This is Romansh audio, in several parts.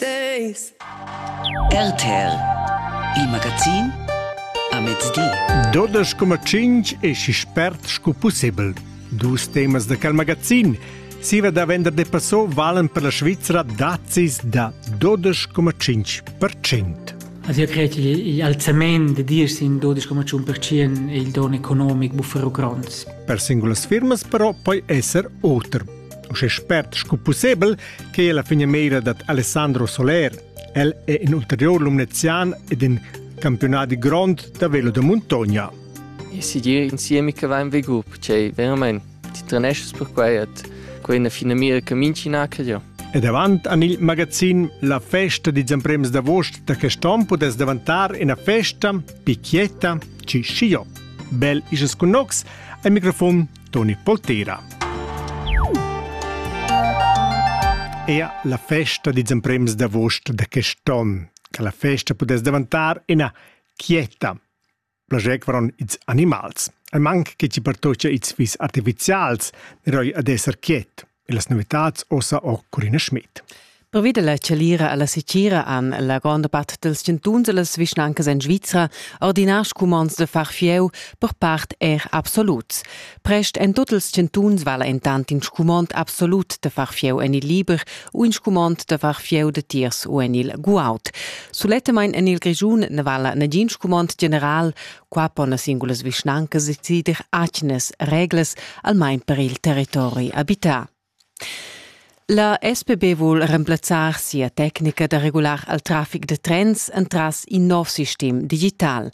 Days. RTL, il magazin a mezdi. Dodas coma cinc e si spert sco possibel. Dus temas de quel magazin. Siva da vender de Passau valen per la Svizzera dazis da 12,5%. Also ich credo gli alzament de dir sin 12,1% è il don economico bufferu grond. Per singulas firmas però poi esser oter uschè spert sco pussebel che la finamira dad Alessandro Soler. El è in ulterior lumnezian ed in campiunadi grond da velo da muntogna. Ich sehe dir insieme che va in Vegup, cioè veramente ti trenesci per quai et quella fina mira che mincinacchio. Ed avant an il magazin La festa di Zamprems d'avost da quest'on podes davantar ina festa picchietta ci scio. Bel isas con nox, al microfon Toni Poltera. Ea la festa dils emprems d'avost da quest onn, che la festa pudess davantar ina quieta. Plagec varon ils animals. Al manc che ci pertocia ils fis artificials, eroi ad esser quiet. e las novitads ossa or Corina Schmidt. Pervi della chalira alla secira han la gronda part dels chantuns e las vischnancas en Svizra ordinar scumonds de far fieu per part er absoluts. Prest en tots els chantuns vala entant in scumond absolut de far fieu en il liber u in scumond de far fieu de tiers u en il guaut. Sulettemain en il Grigiun ne vala nagin scumond general, Qua pon las singulas vischnancas decider atgnas reglas, almain per il territori abità. La SPB vul remplazzar sia tecnica da regular al traffic da trens entras in nov sistem digital.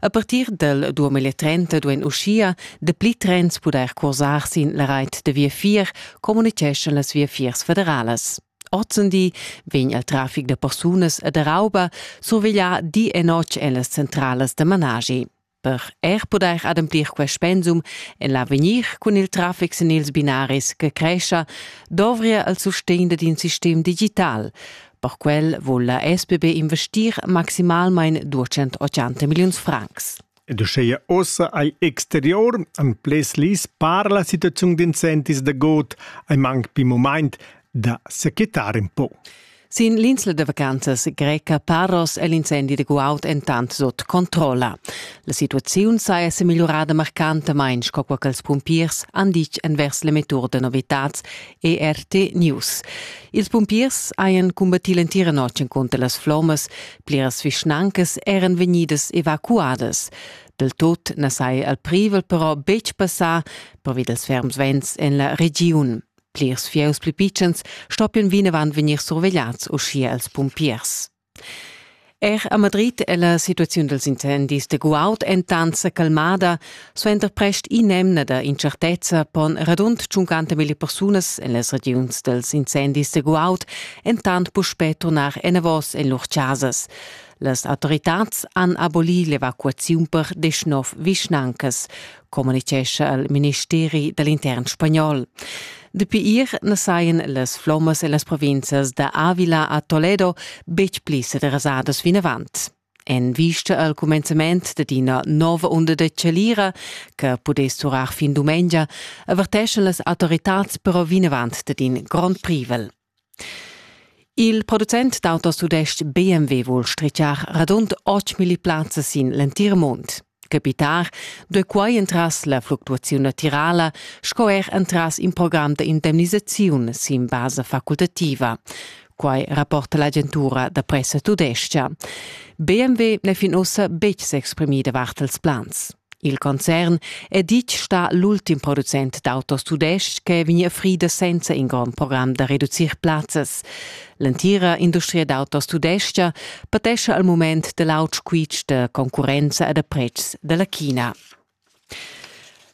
A partir del 2030 duein uschia dapli trens pudair cursar sin la reit da viafier, communiceschan las viafiers federalas. Ozendi vegn il trafic da persunas e da rauba surveglià di e notg en las centralas da managi. Per er pudair ademplir quest pensum en l'avegnir cun il traffic sin ils binaris che crescha, dovria il sustegn dad in sistem digital. Per quel vul la SBB investir maximalmain 280 milliuns francs. Ed uscheia ossa ei exterior an ples lis par la situaziun d'incentis da god ei mang pi momaint da sequetar un po. Sin l'insla da vacanzas greca Paros è l'incendi da guaud entant sut controlla. La situaziun saja sa migliorada marcantamain, sco quai ch'ils pumpiers han ditg envers l'emettur da novitads ERT News. Ils pumpiers hajan cumbattì l'entira notg cunter las flommas, Pliras vischnancas eran vegnidas evacuadas. Del tot na sai al privel però betg passar pervi dels ferms vents en la regiun. Plirs fieus pli pitschens stoppian vinavant vegnir survegliats uschia als pumpiers. Er a Madrid è la situaziun dels incendis de guaud entant sa calmada, Suenter prest in'emna da incertezza pon radund 50.000 persunas en las regiuns dals incendis de Guaud entant puspè turnar enavos en lur chasas. Las autoritads han abolì l'evacuaziun per deschnov vischnancas, communitgescha il ministeri dall'intern spagnol. Dapi ier na sajan las flommas en las provinzas da Avila a Toledo betg pli sederasadas vinavant. En vista al cumenzament dad ina nova unda da chalira che pudess durar fin dumengia, averteschan las autoritads però vinavant dad in grond privel. Il producent d'autos tudestg BMW vul strichar radund 8.000 plazzas sin l'entir mund. Capitar duei quei entras la fluctuaziun natirala sco er entras in program da indemnisaziun sin basa facultativa. Quai rapporta l'agentura da pressa tudescha. BMW n'è fin ussa betg s'exprimida vart als plans. Il concern è ditg sta l'ultim producent d'autos tudestg che vegnia frida senza in grond program da reducir plazzas. L'entira industria d'autos tudescha patescha al mument da l'aut squitsch da concurrenza e da pretschs da la China.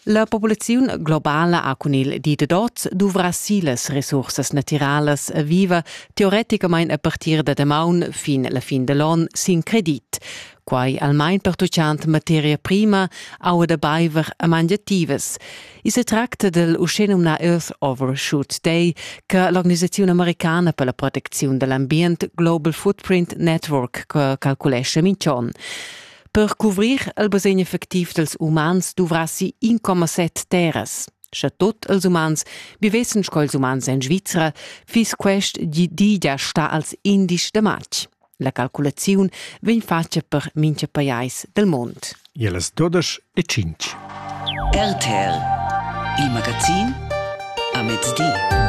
La populaziun globala ha cun il di da dots duvrà si las resursas natiralas e viva teoreticamain a partir da damaun fin la fin da l'on sin credit. quai almain pertuchant materia prima, aua da baiver e mangiativas. I se tracta del uschenumnà Earth Overshoot Day che l'organisazione americana per la protezione dell'ambient Global Footprint Network calculesce minch'on. Per cuvrir il basegn effectiv dels umans duvrassi 1,7 terras. Sche tot els umans vivessen sco ils umans en Svizzera, fiss quest di digia sta als indici de març. La calculaziun vegn fatga per mincha pajais del mond. E las dodesch e cinc. RTL, il magazin a mezdi.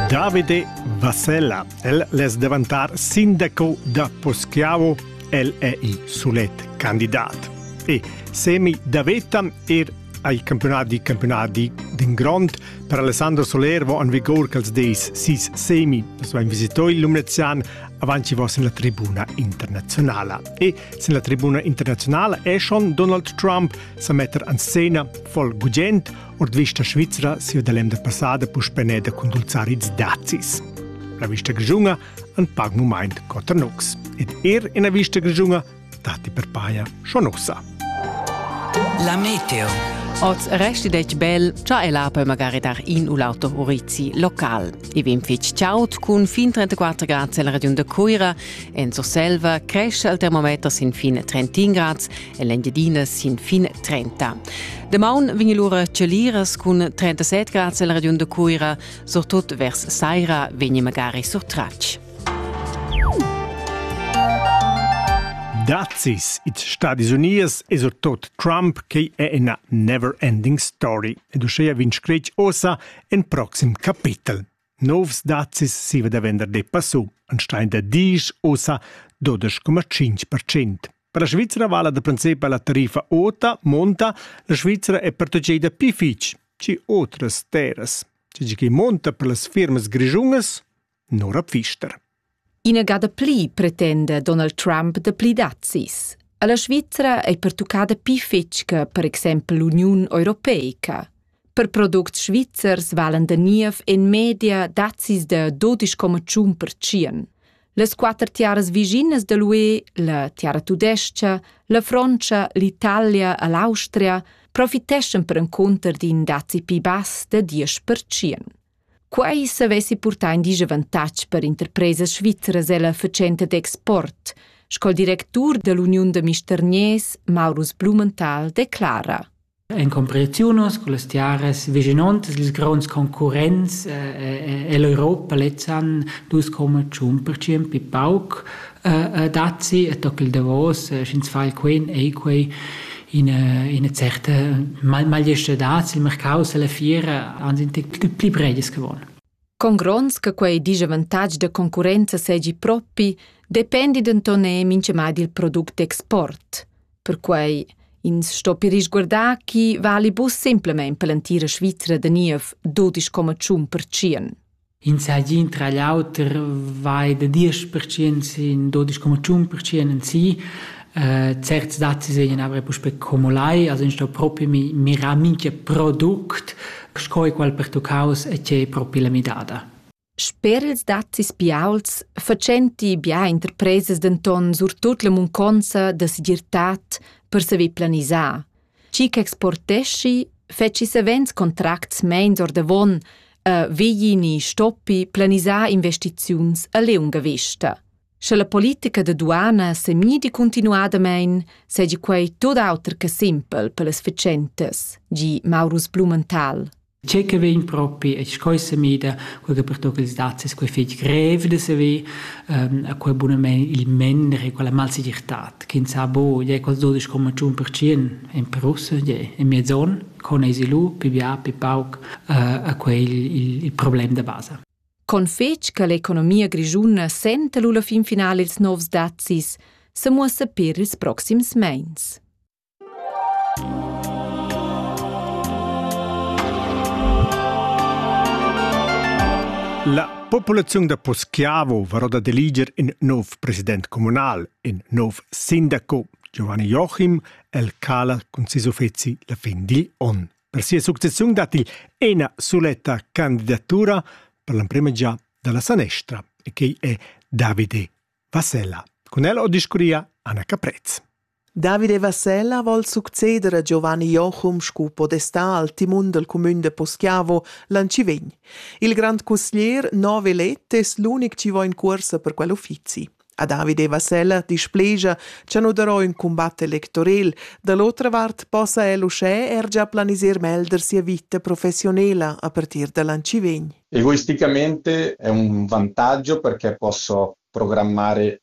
Davide Vassella, el les davantar sindaco da Poschiavo, el è i sulet candidat. E semi davetam er ha il campiunadi campiunadi d'in grond per Alessandro Soler vo en vigur quels dis sis semi. Nus vain visito il Lumnezian avant chi vo sin la tribuna internazionala. E sin la tribuna internazionala è schon Donald Trump sa metter en scena voll gugent ord vista svizra sia da l'emda passada puspeneda cun dulzarids dazis. La vista grigiunga an pag mumaint coter nox. Ed er ina vista grigiunga dati per paia schon ussa. La meteo. Oz resti detg bel, cha el ha poi magari dar in u l'auto urizi local. I vin fitg chaud cun fin 34 grads en la regiun de Cuira. En Surselva cresce il termometer sin fin 31 grads e l'Engiadina sin fin 30. Demaun vin lura celiras cun 37 grads en la regiun de Cuira, surtut vers saira vegni magari surtratg. Dazis, its Stadis Unies e surtot Trump, che è ina never-ending story ed uschea vin scretg ossa en proxim capitel. Novs dazis si va da vender de passu, an stein da disch ossa 12,5%. Per la Svizzera vala da principe la tariffa ota, monta, la Svizzera è protegida più fitch, ci otras terras. Ci che monta per las firmas grigiungas, Nora Pfister. Ina gada pli pretenda Donald Trump da pli dazis. A la Svizra è pertuccada pli fitg che per exempel l'Uniun europeica. Per products svizzers valen da niev en media dazis da 12,1%. Las quatter tiaras viginas da l'UE, la tiara tudesca, la Frontscha, l'Italia e l'Austria profiteschan per encunter d'in dazi pi bass da 10%. Quei savessi purtar in disavantatg per interpresas svizras ella fatschenta d'export, sco il directur dall'uniun da mistergners Maurus Blumenthal declara. En comparaziunos con las tiaras vicinontas ils gronds concurrents eh, eh, ell'Europa lezzan 2,1% più pauc dazi e tocca il davos, sch'ins fa il quen ei quei ina, ina certa magliestadad sil mercau la fiera han sind pli breies geworden. Con grons che quei disavantatg de concurenza segi propi, dependi denton e minchemad il product d'export. Perquei ins sto per risguardar chi vali bus simplemente per l'antira Svizra de niev 12,1%. Ins hagi tra l'auter vai da diesch pertschient sin dudesch coma tschun pertschient en si. Äh, certs dazis seigien aber puspei como lai, also ins sto propi mi, mirar minchia product, sco e qual pertuccaus e che è propi la midada. Sper ils dazis biauls facenti bia interpresas denton surtut la munconza da segirtad per saver planisar. Chi ch'exporteschi fetschi savens contracts meins ordavon e vegli ni stoppi planisar investiziuns a liunga vista. Sche la politica da duana semidi continuadamein, seigi quei tut auter che simpel per las fatschentas, di Maurus Blumenthal. Tgei che vegn propi e sco sa mida, quei che pertucca ils dazis, quei fetg grev da saver, ehm, a quei bunamein il mender e quella malsegirtad ch'ins ha buca, gliei quels dudesch coma tschun pertschien en Perussa, gliei en miez onn, con eisi lu, pi bia, pi pauc, eh, a quei il, il, il problem da basa. Con fetg che l'economia grischuna senta lu la fin finala ils novs dazis, se muossa per ils proxims meins. La populaziun da Poschiavo varò da deliger in nov president communal, in nov sindaco, Giovanni Joachim, el cala cun ses uffeci la fin digl onn. Per sia successiun dat il ena suletta candidatura per l'emprema già dalla sanestra e che è Davide Vassella. Con el ho discurria Anna Caprez. David e Vassella vol succeder a Giovanni Jochum sco podestà al timun dal cumün da Poschiavo l'an chi vegn. Il grand custier nove let es l'unic chi vo in cuorsa per quel uffizi. A David e Vassella displegia cha nu darò ün cumbat electorel, da l'otra vart possa el uschè er già planiser melder sia vita professionela a partir da l'an chi vegn. Egoisticamente è un vantaggio perché posso programmare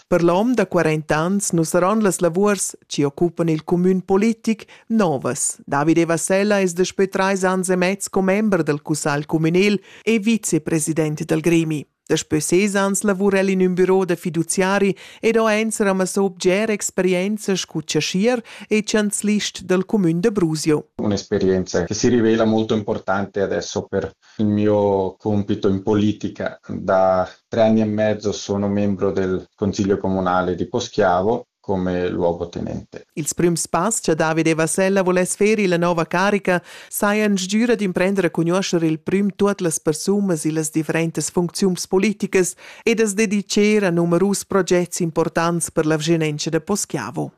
Per l'hom da 40 ans nu saron las lavuors chi occupan il cumün politic novas. David Evasella es daspö trais ans e mez commember dal cussagl cumünel e vicepresident dal gremi. Daspö ses ans lavura el in ün büro da fiduziari ed ho ens ramassò bger experienza scu chaschier e chanzlist dal cumün da Brusio. Un'esperienza che si rivela molto importante adesso per Il mio compito in politica da tre anni e mezzo sono membro del consiglio comunale di Poschiavo come luogotenente. Ils prüms pass cha David e Vasella voless fer illa nouva carica sajan stgüra d'imprender a cugnuoscher il prüm tuot las persunas illas differentas funcziuns politicas e da's dedicher a numerus progets importants per la vschinenza da Poschiavo.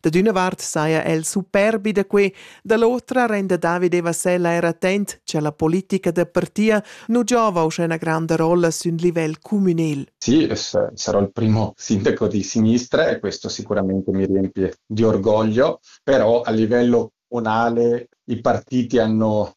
Da d'üna vart saja el superbi da que, da l'otra renda Davide Vasella er attent cha la politica da partia nu giova uschè üna granda rolla sün livel cumünel. Sì, sarò il primo sindaco di sinistra e questo sicuramente mi riempie di orgoglio, però a livello comunale i partiti hanno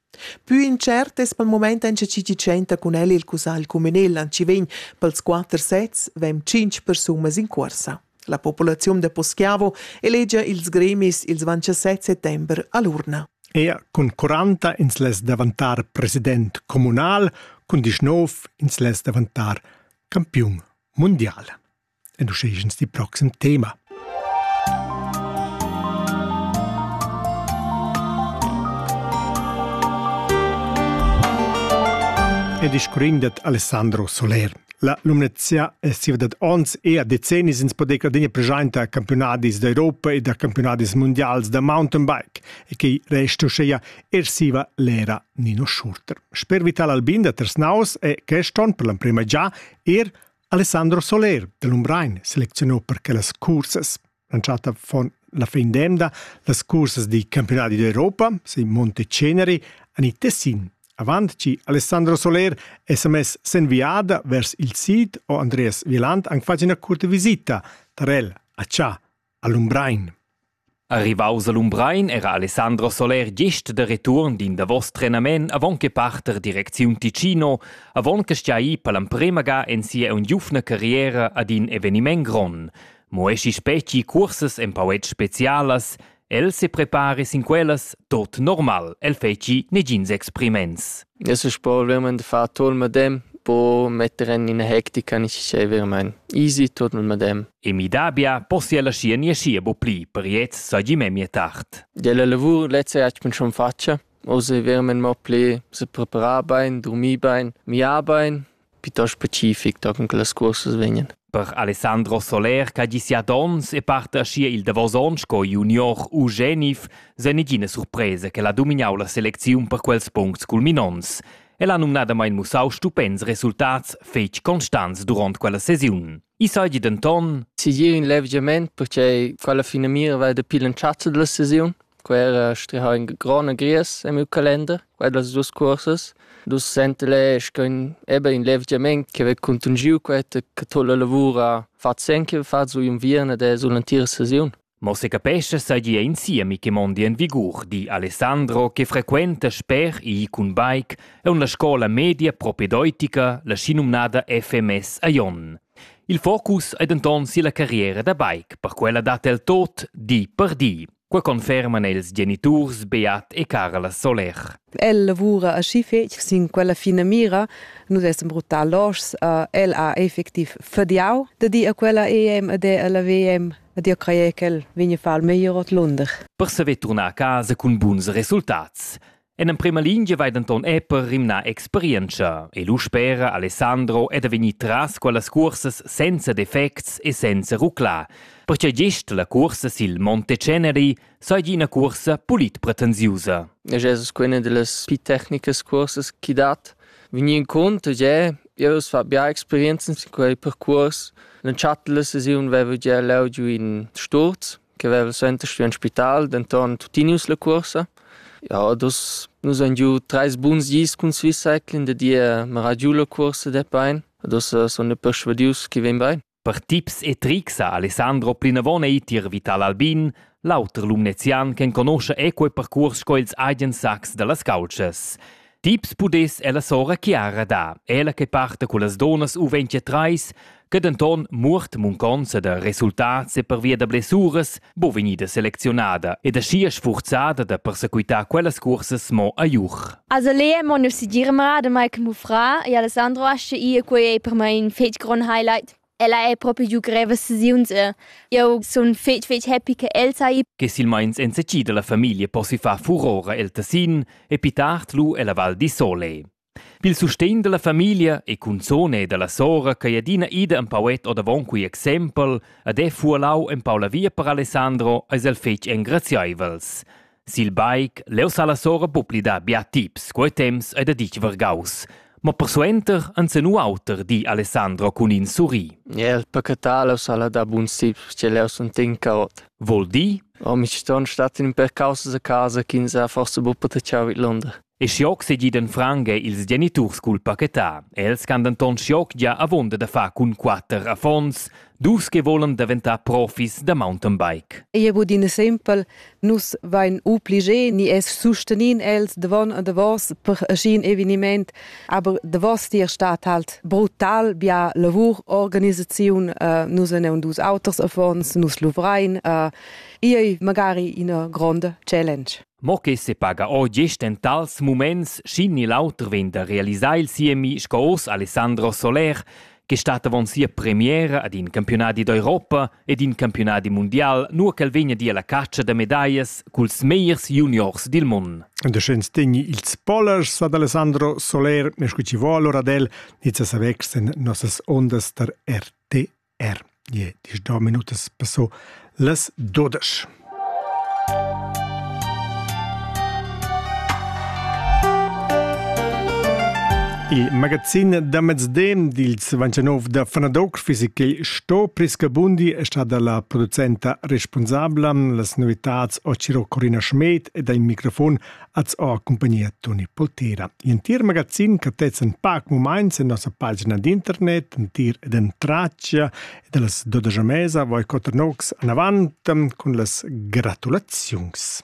Pü intschert es pel mumaint auncha chi chi tschenta cun el il cussagl cumünel an chi vegn pels quatter sets vegn tschinch persunas in cuorsa. La populaziun da Poschiavo elegia ils gremis ils 27 settember a l'urna. Er cun 40 ins less davantar president communal, cun 19 ins less davantar campiun mundial. ed uschè ins di proxim tema. Ed iscurin dat Alessandro Soler. La Lumnezia è siva dad ons e a decennis ins podeca adegna presenta campionadis d'Europa e da campionadis mundials da mountainbike e che resta uscheia er siva l'era Nino Schurter. Sper Vital Albin da Tersnaus è quest on per l'amprema già er Alessandro Soler del Umbrein selezionò per quellas cursas. Lanciata von la fin d'emda las cursas di campionati d'Europa, si Monte Ceneri, an i Tessin. Avant ci Alessandro Soler è sa mess sen viada vers il sid o Andreas Wieland an facina curta visita tar el a Cha. a Lumbrein. Arrivaus a Lumbrein era Alessandro Soler gest da return d'in davos trenament avon che parter direcziun Ticino, avon che stiai per l'emprema ga en sia ungiufna carriera ad in eveniment gron. Mo esci speci cursas empauet specialas, el se prepare sin quellas tot normal, el feci negins expriments. Es ün sport vermaint da far tuot il madem, po metter en ina hectica necessà vermaint. Easy tuot il madem. E midà bia possia la scia nie scia bo pli per gliez seigi memia tard. Della lavur lezza hat man schon faccia. Oz è vermaint mo pli se preparar bein, dormir bein, miar bein, piuttost specific daco che las cursas vegnan. Per Alessandro Soler ch'ha gi siat onns e parta aschia il davos onn sco junior u genif, sei negina surpresa che ha domignau la selecziun per quels puncts culminonts. El ha numnadamain mussau stupends resultats fetg constants duront quella sesiun. I seigi denton Sigir in levgiament perché quella finamira va da pil entschatta della sesiun. Quera striha in grona gries im Kalender, quellas dus curses. Dus sentele schon eben in levgiament che ve contungiu queta che tolle lavura fat senke fat su in vierna de sul entira sesiun. Mo secapescha seigi ein siemi che mondi en vigur, di Alessandro che frequenta sper ir cun bike aunc la scola media propedeutica, la schinumnada FMS a Jon. Il focus ei denton silla carriera da bike, per quella dat el tot di per di. Qua conferman els geniturs Beat e Carla Soler. El lavura aschi fetg sin quella finamira. Nus essan bruttar loschs. El ha effectiv fadiau da dir a quella EM ed è alla WM Ed io craja ch'el vegn a far meglier ordlunder. Per saver turnar a casa cun buns resultats. En emprema lingia vai denton Epper rimnar experientscha e lu spera Alessandro è da vegnir tras quellas cursas senza defects e senza ruclar, perche gest la cursa sil Monte Ceneri seigi ina cursa pulit pretensiusa. Jesus quella delle più tecniche cursas chi dat Vegni incunter gie, jeu fa bia experienzas in quei percuors. L'entschatta sesiun veva gia leu giu in sturz che veva suenter stuì in spital, denton tutinius la cuorsa. Ja, dus, nus han giu treis buns gis cun Swiss Cycling, da dir meragiu la cuorsa de bein. Dus sun persuadius che vegn bein. Per tips e trics ha Alessandro plinavon ei tier Vital Albin, l'auter lumnezian ch'enconuscha equo per cuors sco ils Agen Sax dallas caultschas. Tips pudess ella sora Chiara dar, ella che parta cullas donas U23, che denton muort munconza da resultats e pervia da blessuras bo vegnida selecziunada ed aschia sfurzada da persequitar quellas cursas mo a Juch. Also Lea mon nu si dirmra de Mike Mufra e Alessandro asce ia quei ei per mai in fetg grond highlight. Ella è proprio giù greve sesiuns e eu sun fetg fetg happy che el sai. Che silmeins en secida la famiglia possi far furora el Tessin e pi tard lu ella Val di Sole. Pil sustegn dalla famiglia e cunzun e dalla sora ch'ei adina ida empau ed ordavon quei exempel ed ei fuolau empau la via per Alessandro eis el fetg engrazieivels. Sil bike leu sa la sora bucli dar bia tips, quei temps ei da ditg vargaus. Ma persuenter ensen auter di Alessandro cun in surri. El pecatalo sala da bun sip, che leu sun tin caot. Vol di? Oh, mi ci ston stat in per causa da casa, ch'ins ha forse bu potechau vid Londra. E schioc segidan franca ils geniturs cul pachetà. Els han denton schioc gia avunda da far cun quatter affons, dus che volan daventar profis da mountain bike. Ei ei budina simpel, nus vein obligé ni es sustenin els davon e davos per ascin eveniment, aber davos tier stat halt brutal bia lavur, organisaziun, uh, nus en dus auters affons, nus luvrein, uh, ei magari ina gronda challenge. Mo che sepaga ord gest en tals muments sc'in ni l'auter vegn da realisar il siemi sco oz Alessandro Soler che stat avon sia premiera ad in campiunadi d'Europa ed in campiunadi mundial, nua ch'el vegn a dir alla catscha da medaglias culs megliers juniors dil mund. Da schens tegni ils polers ad Alessandro Soler, ne scu ci vo allora d'el, nica sa vexen nossas ondas tar RT Er je diesch do minutas passò las dodesch. Il magazin da mezden dils 29 da Fanadoc Fisical sto Priscabundi è stata la producenta responsabla. Las novitads ho Ciro Corina Schmed ed ha in microfon As ho accumpagnia Toni Poltera. L'entir magazin cattezzan pac mumaints in nossa pagina d'internet, entir ed en traccia, e da las dodesch mesa voi quatter nocs anavant cun las gratulaziuns.